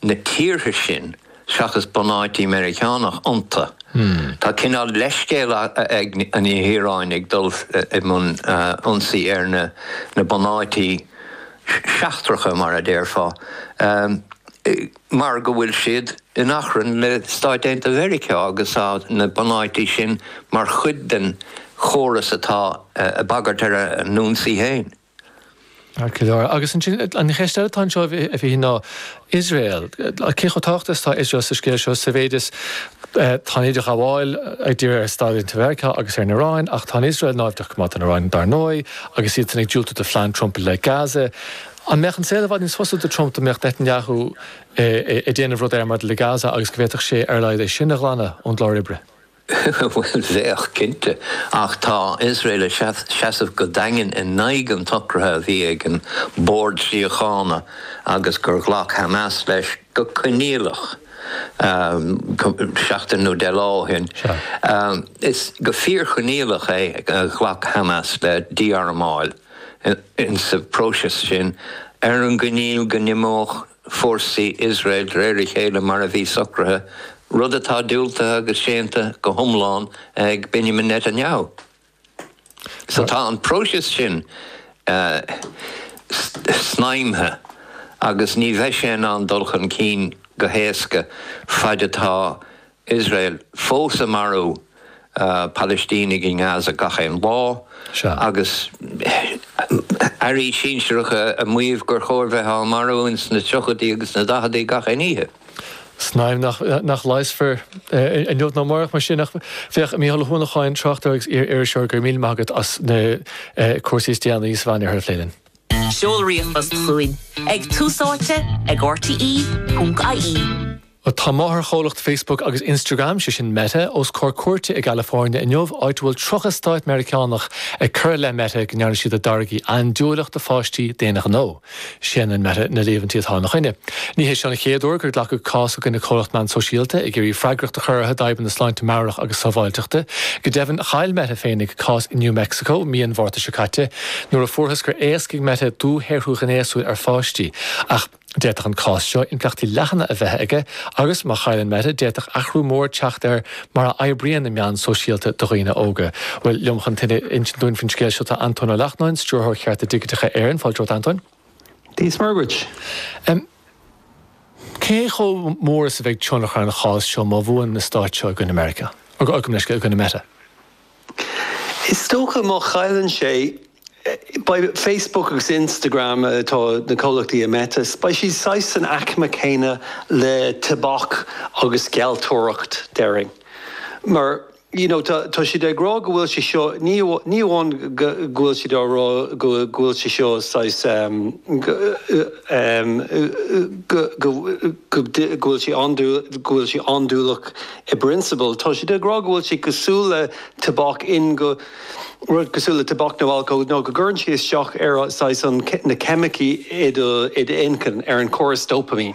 na tíortha sin, seachas bunáití Meiriceánach iontu. Tá cineál leithscéil ag an Iaráin ag dul i mbun ionsaí ar na bunáití seachtracha, mar a déarfá, mar go bhfuil siad in achrann le Stáit Aontaithe Mheiriceá agus na bunáití sin mar chuid den chóras atá ag bagairt ar a n-ionsaí féin. Ar chlár. Agus ansin, an cheist eile atá anseo, a Mhíchíl, ná Iosrael. Cé chomh tábhachtach is atá Iosrael sa scéal seo sa mhéid is tá an t-idirghabháil ag díriú ar Stáit Aontaithe Mheiriceá agus ar an Iaráin, ach tá Iosrael náimhdeach go maith don Iaráin, dar ndóigh, agus iadsan ag diúltú do phlean Trump i leith Gaza. An mbeadh an saol i bhfad níos fusa do Trump dá mbeadh Netanyahu ag déanamh rud éigin maidir le Gaza agus go bhféadfadh sé ar a laghad é sin a ghlanadh ón gclár oibre? Bhuel, bheadh, cinnte. Ach tá Iosrael ag seasamh go daingean in aghaidh an tsocraithe a bhí ag an mBord Síochána agus gur ghlac Hamas leis go coinníollach seachtain nó deich lá ó shin. Is go fíorchoinníollach é a ghlac Hamas le dí-armáil insa próiseas sin ar an gcoinníoll go n-imeodh fórsaí Iosrael de réir a chéile mar a bhí socraithe, rud atá diúltaithe agus séanta go hiomlán ag Benjamin Netanyahu. So tá an próiseas sin snaidhmthe agus ní bheidh sé in ann dul chun cinn go héasca faid atá Iosrael fós ag marú Palaistínigh i nGaza gach aon lá agus airí sinsearacha ag maíomh gur chóir bheith á marú ins na tríochaidí agus na daicheadaí gach aon oíche. Snaidhm nach leigheasfar inniu ná amárach mar sin ach féach, Mícheál Ó hUanacháin, tráchtaire agus iar-iriseoir, go raibh míle maith agat as na cúrsaí is déanaí sa Mheánoirthear a phlé linn. Seol ríomhphost chugainn ag Tús Áite ag rte.ie. Tá máthairchomhlacht Facebook agus Instagram, sé sin Meta, os comhair cúirte i gCalifornia inniu, áit a bhfuil 30 stát Meiriceánach ag cur i leith Meta go ndearna siad a dtáirgí andúileach do pháistí d'aon ghnó. Séanann Meta na líomhaintí atá ina choinne. Ní hé seo an chéad uair gur glacadh cás i gcoinne comhlacht meán sóisialta ag iarraidh freagracht a chur orthu d'fhadhbanna sláinte meabhrach agus sábháilteachta. Go deimhin, chaill Meta féinig cás i New Mexico mí an Mhárta seo caite nuair a fuarthas gur éascaigh Meta dúshaothrú gnéasúil ar pháistí ach D'fhéadfadh an cás seo impleachtaí leathana a bheith aige agus, má chailleann Meta, d'fhéadfadh athrú mór teacht ar mar a oibríonn na meáin shóisialta do dhaoine óga. Bhuel, liom chun tuilleadh a insint dúinn faoin scéal seo tá Antóin Ó Lachtnáin, Stiúrthóir Chearta Digiteacha Éireann. Fáilte romhat, Antóin. Dia 's Muire dhuit. Cé chomh mór is a bheidh tionchar an chás seo má bhuann na Stáit seo i gcoinne Meiriceá, gabh mo leithscéal, i gcoinne Meta? Is dócha má chailleann sé, beidh Facebook agus Instagram, atá na comhlachtaí Meta, beidh siad saghas san aicme céanna le tobac agus gealltóireacht, déarfainn. Mar, you know, tá siad ag rá go bhfuil sé seo, ní amháin go bhfuil siad á rá go bhfuil sé seo saghas, go bhfuil sé, go bhfuil sé andúileach, I bprionsabal, tá siad ag rá go bhfuil sé cosúil le tobac in go, rud cosúil le tobac nó alcól, go gcuireann siad isteach ar saghas an, na ceimicí i do, i d'inchinn, ar an córas dopaimín.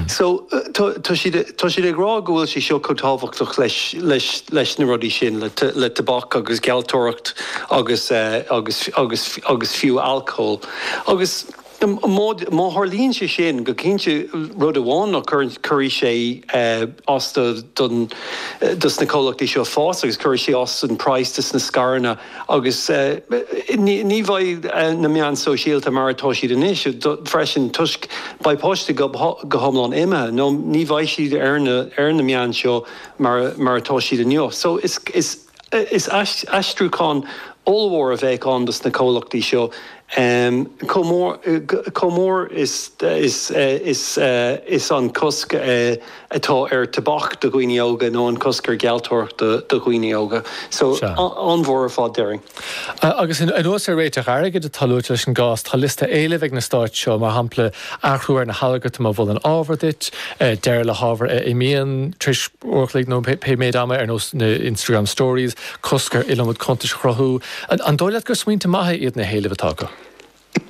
So, tá, tá siad, tá siad ag rá go bhfuil sé seo chomh tábhachtach leis, leis, leis na rudaí sin, le, le tobac agus gealltóireacht agus, agus, agus, agus fiú alcól. Agus. Má tharlaíonn sé sin, go cinnte rud amháin ná cuirfidh sé as don, dos na comhlachtaí seo fás agus cuirfidh sé as don price dos na scaireanna agus ní bheidh na meáin shóisialta mar atá siad anois freisin toisc beidh páistí go hiomlán imithe nó ní bheidh siad ar na meáin seo mar atá siad inniu. Is aistriúchán ollmhór a bheadh ann dos na comhlachtaí seo chomh mór, chomh mór is an cosc atá ar tobac do dhaoine óga nó an cosc ar ghealltóireacht do dhaoine óga. So an-mhór ar fad déarfainn. Agus anuas ar réiteach airgid atá luaite leis an gcás, tá liosta éileamh ag na stáit seo, mar shampla, athrú ar na halgartaim a mholann ábhar duit, deireadh le hábhar a imíonn tar éis uair a chloig nó pé méid ama, ar nós na Instagram Stories, cosc ar iliomad cuntais a chruthú. An dóigh leat gur smaointe maithe iad na héilimh atá acu?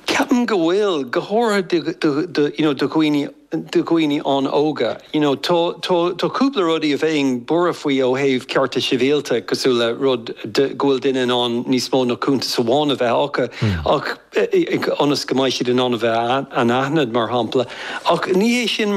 Ceapaim go bhfuil, go háirithe do you know do dhaoine do dhaoine an-óga. You know tá tá tá cúpla rudaí a bheinn buartha faoi ó thaobh cearta sibhialta cosúil le rud go bhfuil duine in ann níos mó ná cuntas amháin a bheith acu ach, ionas go mbeidh siad in ann a bheith anaithnid, mar shampla, ach ní hé sin mar.